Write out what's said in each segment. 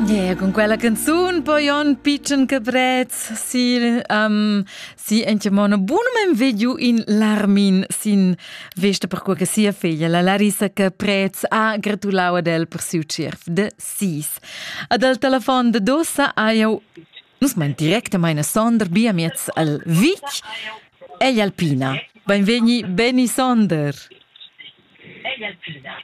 Yeah, con quella canzun poi on pitschen caprez si um, si ente mona bunum vediu in Larmin sin vesta per quella che sia figlia la Larissa Caprez ha gratulau ad el per siu cerf de sis. Ad al telefon de dosa aiu nus mein directamente sonder bia miez al Vic e Alpina. Benvegni Benny Sonder. Egli Alpina.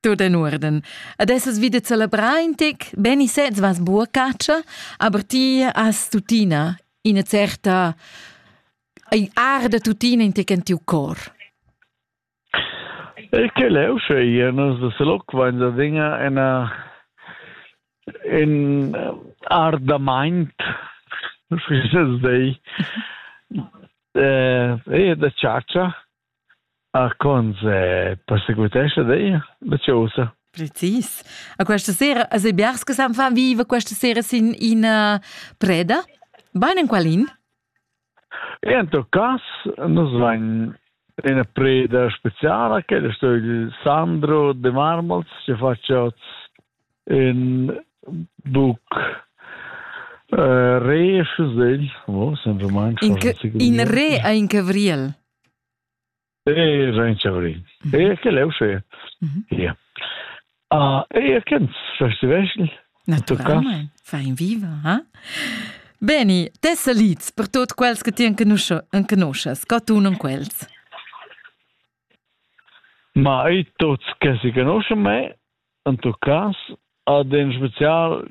Tut in urden. Ad essas vide celebrar in tec, beni sez vas buca caccia, aber ti has tuttina ina certa arda tuttina in tec in tiu cor. E che leu sche io non se loc vain da dinga ena in ardamaint sfisses dei eh e da ciaccia Arcons perseguitescha dir la chausa? Precis. A questa sera, a Sebiars che san fa viva questa sera sin ina preda? Bain in qualin? En tot cas, nus van una preda speciale che è sto il Sandro de Marmols che faccia in buc uh, re, in re in cavriel. E sein chauri. E che leu se. Ja. Ah, e ken festival. Naturalmente. Fein viva, ha? Beni, te salids per tot quels che ti enconuschas, co tu non quels. Ma i tots che si conoscono me, in tuo caso, ad in special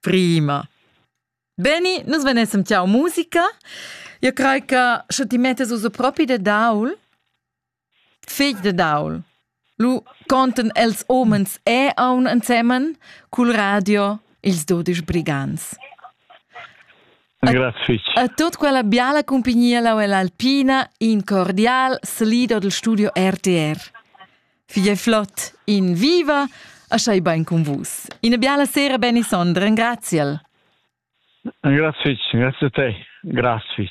Prima. Beni, nus venessem tiau musica. Eu crei che sche ti mettas ussa propi de daul, fegl de daul, lu conten els homens e aun ensemen cul radio ils dudisch brigants. Grazie fich. A tut quella biala compagnia lau ell'Alpina in cordial salido del studio RTR. Figlia Flot, in viva! Aschai bain con vus. Ina biala sera, Benny Sonder, engraziel. Grazie, grazie a te. Grazie.